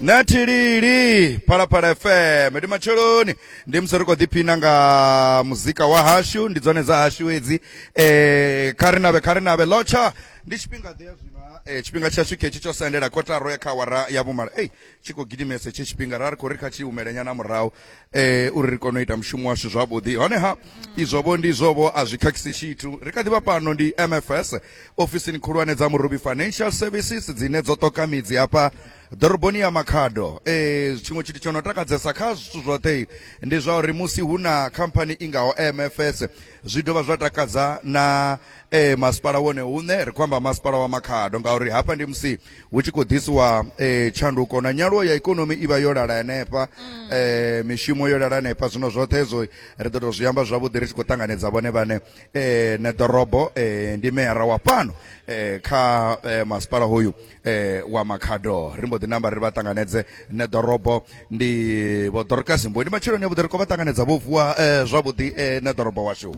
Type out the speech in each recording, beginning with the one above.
na thilili phalaphala fm ndi matsheloni ndi musi ri khou ḓiphina nga muzika wa hashu ndi dzone dza hashu hedzi eh kha ri navhe kha ri navhe lotsha ndi tshifhinga ḓe ya zwino ha, eh, tshifhinga tshashu khetshi tsho sendela kotaro ya kha awara ya vhumalo ei tshi khou gidimesa hetshi tshifhinga ra ri khou ri kha tshi humelenyana murahu eh uri ri kone u ita mushumo washu zwavhuḓi honeha izwovho ndi izwovho a zwi khakhisi tshithu ri kha ḓivha fhano ndi mfs ofisini khulwane dza murubi financial services dzine dzo ṱoka midzi hafha ḓoroboni ya makhado eh tshiṅwe tshithu tsho no takadzesa kha zwithu zwoṱhe ndi zwa uri musi hu na khamphani i ngaho mfs zwi dovha zwa takadza na eh, masipala wone hune ri khou amba masipala wa makhado ngauri hafha ndi musi hu tshi khou ḓisiwa eh, tshanduko na nyaluwo ya ikonomi i vha yo lala henefha mm. eh, mishumo yo lala henefha zwino zwoṱhe hezwo ri ḓo tou zwi amba zwavhuḓi ri tshi khou ṱanganedza vhone vhane eh, na ḓorobo eh, ndi meyara wa fhano eh, kha eh, masipala hoyu eh wa makhado ri mbo ḓi namba ri vha ṱanganedze nṋe ḓorobo ndi vho dorokasi mbo ndi matsheloni a vhuḓi ri khou vha ṱanganedza vho vuwa eh, zwavhuḓi eh, nṋe ḓorobo washu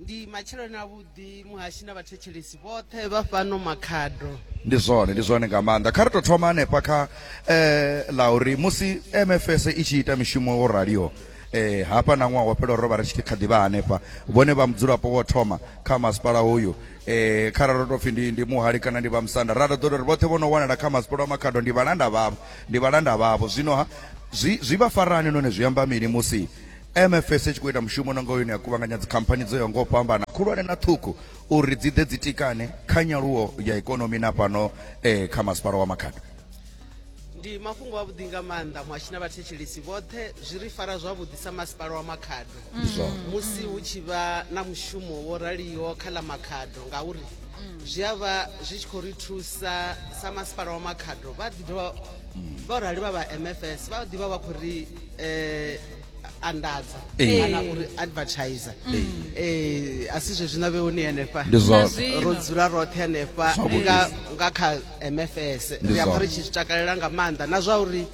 ndi matsheloni a vhuḓi muhashi na vhathetshelesi vhoṱhe vha fhano makhado ndi zwone ndi zwone nga maanḓa kha ri tou thoma hanefha kha eh la uri musi mfs i tshi ita mishumo wo raliho eh hafha na ṅwaha wo fhela ro vha ri tshi kha ḓivha hanefha vhone vha mudzulapo wo thoma kha masipala hoyu eh kharali ro tou pfhi ndi ndi muhali kana ndi vhamusanda ra ḓo ḓo ri vhoṱhe vho no wanala kha masipolo a makhado ndi vhalanda vhavho ndi vhalanda vhavho zwino ha zwi zwi vha farani none zwi amba mini musi mfs i tshi khou ita mushumo na nga yone ya kuvhanganya dzikhamphani dzo yaho nga u fhambana khulwane na ṱhukhu uri dzi ḓe dzi tikane kha nyaluwo ya ikonomi na fhano eh kha masipala wa makhado ndi mafhungo avhuḓi nga maanḓa muhashi na vhathetshelesi vhoṱhe zwi ri fara zwavhuḓi sa masipala wa makhado mm. musi hu tshi vha na mushumo wo raliho kha ḽa makhado ngauri mm. zwi a vha zwi tshi khou ri thusa sa masipala wa makhado vha ḓi dovha mm. vha rali vha vha mfs vha ḓivha vha khou ri um anḓadza Ee. kana uri advertiser eh a si zwezwi na vheoni henefha Ndi zwa- Na zwino. ro dzula roṱhe henefha Zwavhuḓi. nga nga kha mfs Ndi ri amba zwa- ri tshi zwi takalela nga maanḓa na zwa uri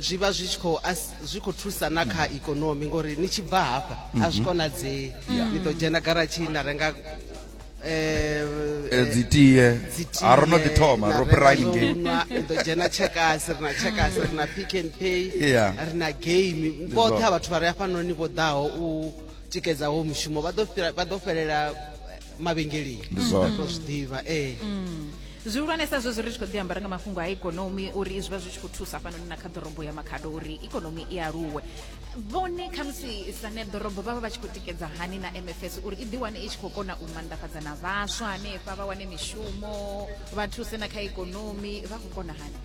zwi vha zwi tshi khou as- zwi khou thusa na kha ikonomi ngori ni tshi bva hafha a zwi konadzei ni ḓo dzhena garatshini na renga eh, dzi tie a ro no ḓi thoma ro fhira ngei ḓo dzhena tshekasi ri na tshekasi ri na pick and pay ri na game vhoṱhe ha vhathu vha re afhanoni vho ḓaho u tikedza wo mushumo vha ḓo fhelela mavhengeleni ro zwi ḓivha ee mm. zwihulwanesa zwo zwi ri tshi khou ḓi ambara nga mafhungo a ikonomi uri zwi vha zwi tshi khou thusa hafhanoni na kha ḓorobo ya makhado uri ikonomi i aluwe vhone khamusi sa neḓorobo vha vha vha tshi khou tikedza hani na mfs uri i ḓiwane i tshi khou kona u mandafhadza na vhaswa hanefha vha wane mishumo vha thuse na kha ikonomi vha khou kona hani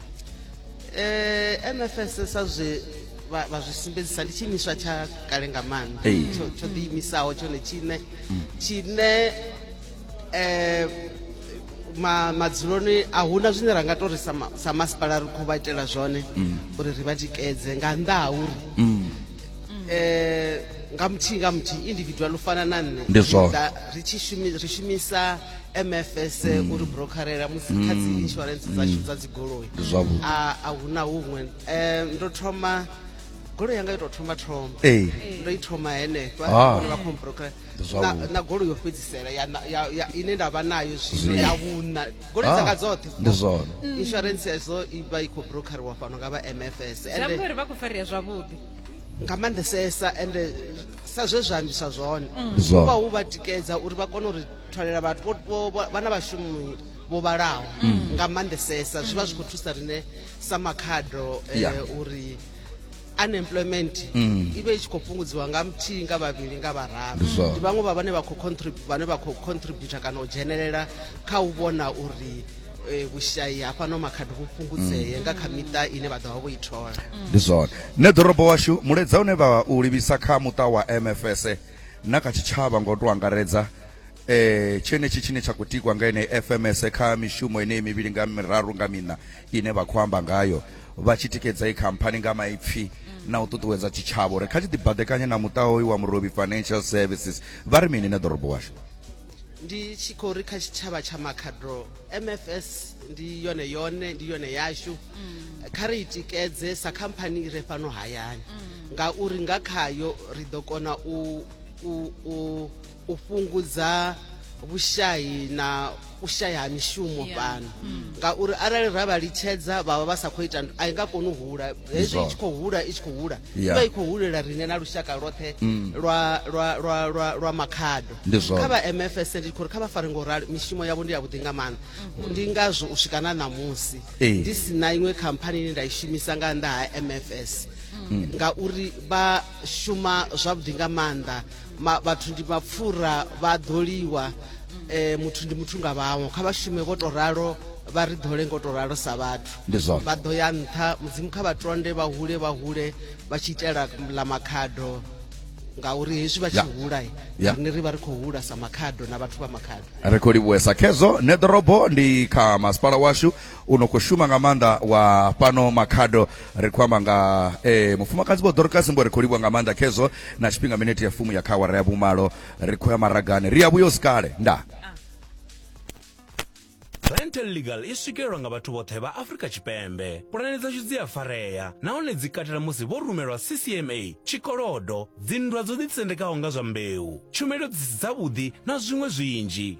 um mfs sa zwe vha vha zwi sumbedzisa ndi tshiimiswa tsha kale nga maanḓa Ee. tsho tsho ḓiimisaho tshone tshine tshine eh, ma madzuloni a huna zwine ra nga to ri sa ma- sa masipala ri khou vha itela zwone uri ri vha tikedze nga nnḓa ha uri eh, nga muthihi nga muthihi individual u fana na nne Ndi zwone. ri ḓa- ri tshi shumi- ri shumisa mfs uri brokerela musi kha dzi insurance dzashu dza dzigoloi Ndi zwavhuḓi. a a huna huṅwe Eh, ndo thoma goloi yanga yo tou thoma thoma ee ndo i thoma henefha Ah. vha khombrokela na, na goloi yo fhedzisela ya, ya, ya, ine nda vha nayo zwino ya vhuna goloi ah, dzanga dzoṱhe ndi zwone mm. insurance yazo i vha i khou brokeriwa fhano nga vha mfs uri vha khou farea zwavhuḓi nga maanḓesesa ende sa zwe zwa ambiswa zwone mm. uvha hu vha tikedza uri vha kone uri thwalela vhathu vhana vhashumi vho vhalaho mm. nga maanḓesesa zwi vha zwi khou thusa rine sa makhado eh, uri unemployment mm. i vhe i tshi khou fhungudziwa nga muthihi nga vhavhili nga vhararu ndi vhaṅwe vha vhane vha khou vhane vha khou contributor kana u dzhenelela kha u vhona uri e, vhushayi hafhano makhadi vhu fhungudzee mm. nga kha miṱa ine vha ḓo vha vho i thola mm. ndi zwone nṋe ḓorobo washu muledza une vha u livhisa kha muṱa wa mfs na kha tshitshavha ngo to angaredza eh tshenetshi tshine tsha khou tikwa nga ene FMS kha mishumo ine mivhili nga miraru nga mina ine vha khou amba ngayo vha tshi tikedza i khamphani nga maipfi na u ṱuṱuwedza tshitshavha uri kha tshi ḓibadekanye na muṱa hoyu wa Murobi Financial Services vha ri mini na ḓorobo washu ndi tshi khou ri kha tshitshavha tsha makhadro mfs ndi yone yone ndi yone yashu kha ri i tikedze sa khamphani i re fhano hayani ngauri nga khayo ri ḓo kona u, u, u u fhungudza vhushayi na u shaya ha mishumo Yeah. fhano ngauri arali ra vha litshedza vhavha vha sa khou ita nd- a i nga koni u hula hezwi i tshi khou hula i tshi khou hula Yeah. ivha i khou hulela rine na lushaka lwoṱhe lwa lwa lwa lwa lwa makhado Ndi zwone. kha vha mfs ndi khou ri kha vha fare ngo rali mishumo yavho ndi yavhuḓi nga maanḓa ndi ngazwo u swika na ṋamusi Ee. ndi si na iṅwe khamphani ine nda i shumisa nga nnḓa ha mfs ngauri vha shuma zwavhuḓi nga maanḓa ma, vhathu ndi mapfura vha ḓo liwa eh, muthu ndi muthu nga vhaṅwe kha vha shume vho to ralo vha ri ḓole ngo to ralo sa vhathu Ndi zwone. vha ḓo ya nṱha mudzimu kha vha tonde vha hule vha hule vha tshi itela ḽa makhado ngauri hezwi vha tshi Ya. hula eh, Ya. riṋe ri vha ri khou hula sa makhado na vhathu vha makhado ri khou livhuwesa khezwo ne ḓorobo ndi kha masipala washu u no khou shuma nga maanḓa wa fhano makhado ri khou amba nga e, mufumakadzi vho dorokasi mbo ri khou livhuwa nga maanḓa khezwo na tshifhinga minete ya fumu ya kha awara ya vhumalo ri khou ya maragani ri ya vhuyo sikale nda Rental Legal i swikelelwa nga vhathu vhoṱhe vha Afrika Tshipembe. Pulane dzashu dzi a farea nahone dzi katela musi vho rumelwa CCMA, tshikolodo, dzinndwa dzo ḓitsendekaho nga zwa mbeu, tshumelo dzi si dzavhuḓi na zwiṅwe zwinzhi.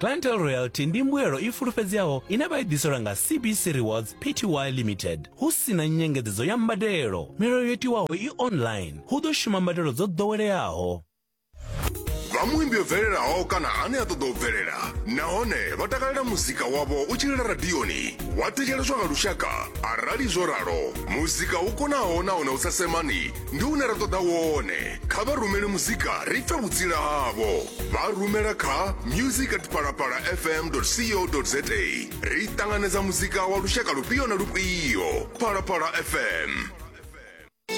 Clientele loyalty ndi mbuyelo i fulufhedzeaho ine vha i ḓiselwa nga CBC Rewards Pty Limited hu si na nyengedzedzo ya mbadelo. Milayo yo tiwaho i online, hu ḓo shuma mbadelo dzo ḓoweleaho. vha muimbi o bvelelaho kana ane a ṱoḓa u bvelela nahone vha takalela muzika wavho u tshi lila radioni wa thetsheleswa nga lushaka arali zwo ralo muzika u konaho nahone u sa semani ndi une ra ṱoḓa wone kha vha rumele muzika ri pfe vhutsila havho vha rumela kha music at palapala fm co za ri ṱanganedza muzika wa lushaka lufhio na lufhio palapala fm